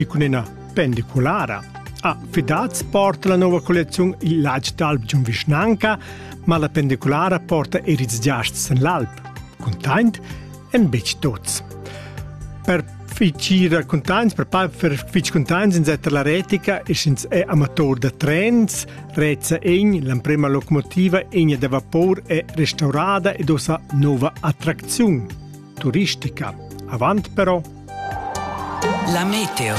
e cun ina pendiculara. A Fidaz porta la nova collezione il Lagh d'Alp giun vischnanca, ma la pendiculara porta er ils giasts en l'alp. Containt en betg tuts. Per fitg containts, per per fitg containts in setta la retica e sch'ins è amator da trens, Reza egn, l'emprema locomotiva egna da vapor è restaurada ed osa nova attracziun. turistica. Avant però. La meteo.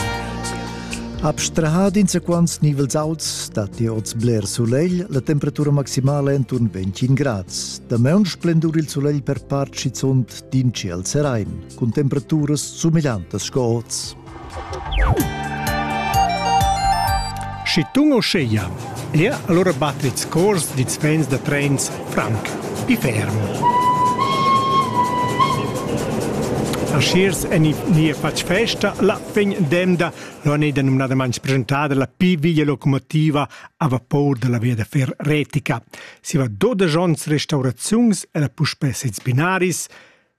Abstrahad insaquants nivels auts datti oz bler sulegl, la temperatura maximala è enturn 25 grads. Damaun splendur il sulegl per part schizunt d'inci al serain, cun temperaturas sumegliantas sco oz. Schi tun uschea, er allura battits cors dits vents da trens franc, pi ferm. Aschiers en nia fatg festa la vegn demda l'on è da numnadamain presentada la pi via locomotiva a vapor dalla via da fer retica. Si va doda jonts restauraziuns e la puspè sez binaris,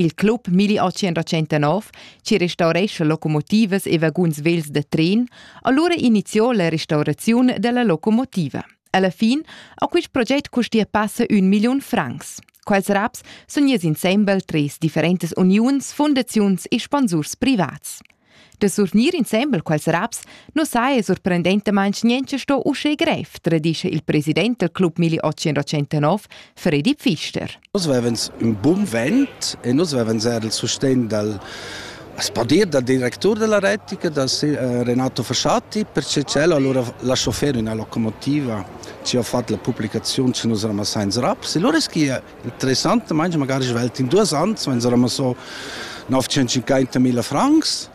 Il club 1829 ci restaurescha locomotivas e vaguns vels da tren, allura iniziò la restauraziun della locomotiva. Alla fin a quist proget custia passa un million francs. Quels raps sun ies insembel tres differentes uniuns, fundaziuns e sponsurs privats. Da surnir insembel quels raps nu saja surprendentamaing niencha sto uschè grev, tradischa il president del Club Mili 889, Fredi Pfister. Nus vevens ün bun vent e nus vevens eir il sustegn dal as po dir dal directur della retica, dal Renato Fasciati, perché c'è allora la chauffeur in la locomotiva ci ha fatto la pubblicazione ci nus ramassains raps e loro es chi interessantamaing magari svelt in duos ans, vegns eram so 950.000 francs.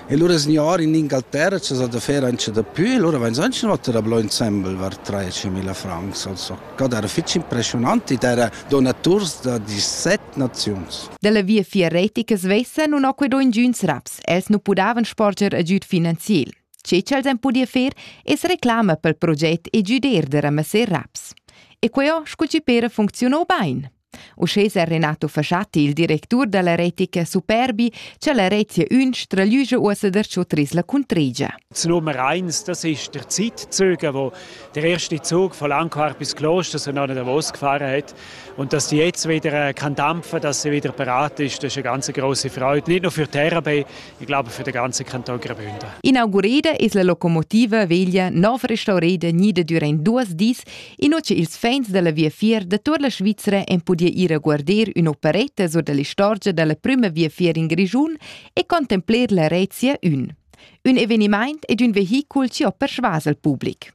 E lura signor in Ingalterra c'è da fer anche da più, e lura vegns anche notter a blo insembel var 13.000 francs. Also, God era fitch impressionant ed era donaturs da 17 naziuns. Della via fiaretica svessa non ho quedò ingiuns raps, els non pudavan sporger agüd finanziel. Tge ch'els han pudì fer es reclama pel proget e güder da ramasser raps. E queo scu chi pera funcziuno bain. Uschè s'è Renato Fasciati, il directur da la retica Superbi, cha la retia ün straglüja uossa darcho tris la cuntregia. Das Nummer 1, das ist der Zeitzug, wo der erste Zug von Langquart bis Kloster so noch in Davos gefahren hat. Und dass die jetzt wieder äh, kann dampfen, dass sie wieder bereit ist, das ist eine ganz große Freude. Nicht nur für Terabay, Ich glaube, für den ganzen Kanton Graubünden. Inaugurada es la locomotiva veglia nov restaurada gnida durant duas dis, in che ils fans della viafier da tut la Svizzera en podia ir a guardar un'operetta sur dell'istorgia della prima viafier in Grigiun e contempler la Rezia 1. Un eveniment ed un vehicul ci ho persuas al public.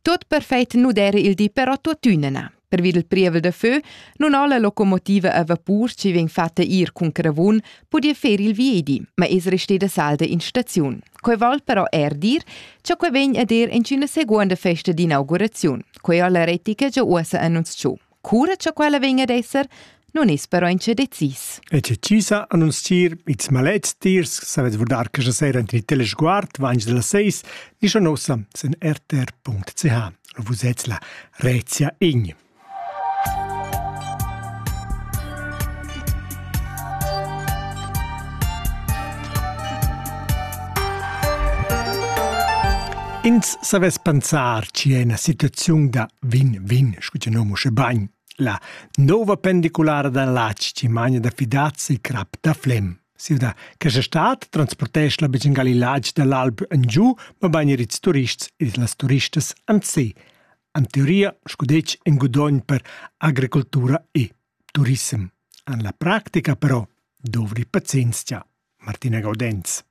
Tot perfet nu dera il di però tuottüna na. Pervi del prievel da fö non ho la locomotiva a vapur chi vegn fatta ir cun cravun podia fer il viedi, ma es resteda salda in staziun. Quei vol però er dir cha quei vegn a der in üna seguonda festa d'inauguraziun. Quei ho la retica già uossa annunzchou. Cura cha quella vegn ad esser, nun es però incha decis. E che cisa annunzier ils malets tiers savet vurdar questa sera int il telesguard vange della 6 di nossa sen rtr.ch. Vus ets la Rezia Ign. Ins savess pensar chi è ina situaziun da vin-vin, scu che nom usche bagn. La nova pendiculara da Latsch ci magna da Fidazzi crap da Flem. Siu da questa stat transportesch la becin gal il latg da l'alb en giu, ma bagn er ils turists e las turistas an se. An teoria, scu detg, in gudogn per agricoltura e Turissem. En la practica però dovri pazienzia, Martina Gaudenz.